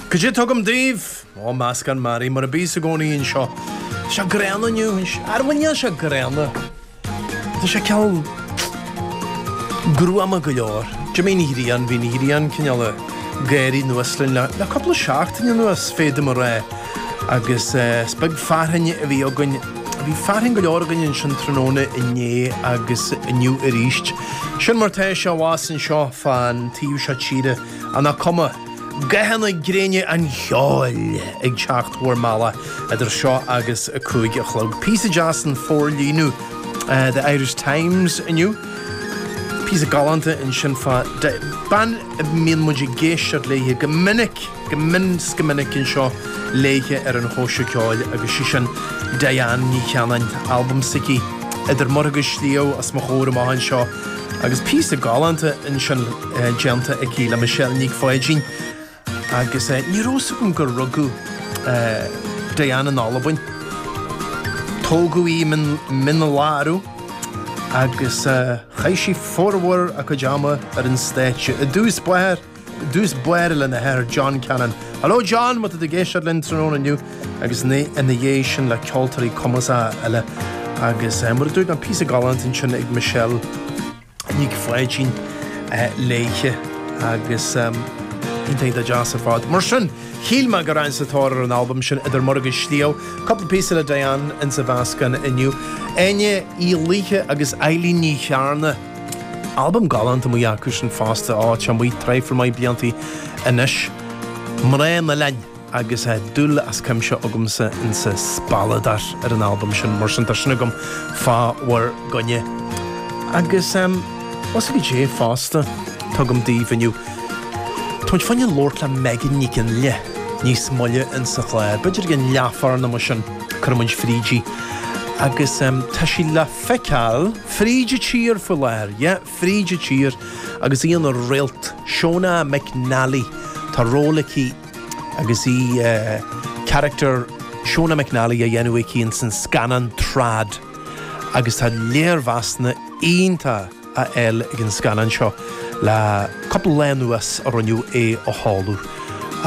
Goidé tá agam daoibh, ó meascán mearaí, mar a bíos i gcónaí anseo. Tá sé gránna inniu. Á bhuel níl sé gránna. Tá sé cineál gruama go leor. D'imigh an ghrian, bhí an ghrian, cineál ag gáirí anuas linn le cúpla seachtain anuas, féadaim a rá. Agus is beag fearthainn a bhí againn. Bhí fearthainn go leor againn ansin tráthnóna inné agus inniu arís. Sin mar tá sé abhus anseo fán taobh seo tíre. Á, nach cuma? Gathanna gréine an cheoil ag teacht bhur mbealach idir seo agus a cúig a chlog. Píosa deas san forlíonadh The Irish Times inniu. Píosa galánta ansin fá dtaobh de bhean a mbíonn muid ag éisteacht léithe go minic. go mion 's go minic anseo léithe ar an Chóisir Ceoil agus 'sí sin Diane Ní Chanainn, albam s'aici Idir Muir agus Sliabh os mo chomhair amach anseo agus píosa galánta ansin déanta aici le Michelle Nic Pháidín agus ní raibh 'fhios agam gur rugadh Diane in Albain. Tógadh í i Mín Lárach agus chaith sí formhór a cuid ama ar an stáitse, i dtús báire, dtús báire lena hathair John Cannon. Hello John, má tá tú ag éisteacht linn tráthnóna inniu agus ina dhiaidh sin le ceoltóirí cumasacha eile agus eh, mar a dúirt mé píosa galánta ansin ag Michelle Nic Pháidín eh, léithe agus em, iontach deas ar fad. Mar sin, shíl mé go rachainn sa tóir ar an albam sin Idir Muir agus Sliabh. Cupla píosa le Diane insa mheascán inniu. Áine Uí Laoithe agus Eilín Ní Chearna. Albam galánta amuigh acusan fosta, atá amuigh traidhfil maith bliantaí anois. Mná an Oileáin agus dúil as cuimse agamsa insa Spealadóir ar an albam sin, mar sin tá sin agam fá bhur gcoinne. Agus ó sea, goidé fosta tá agam daoibh inniu, táimid chun labhairt le Megan Nic Fhionnghaile níos moille insa chlár, b'fhéidir i gcionn leathuair nó mar sin, cuirfimid fríd í. Agus tá sí le feiceáil. Fríd an tír faoi láthair, yeah, fríd an tír agus í ina réalt, Shona McNally, tá ról aici agus í character Shona McNally á dhéanamh aici ins an scannán Trad agus tá léirmheasanna iontacha á fháil ag an scannán seo le cúpla lá anuas ó rinneadh é a sheoladh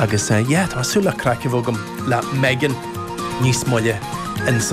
agus yeah, tá súil le craic a bheith agam le Megan níos moille ins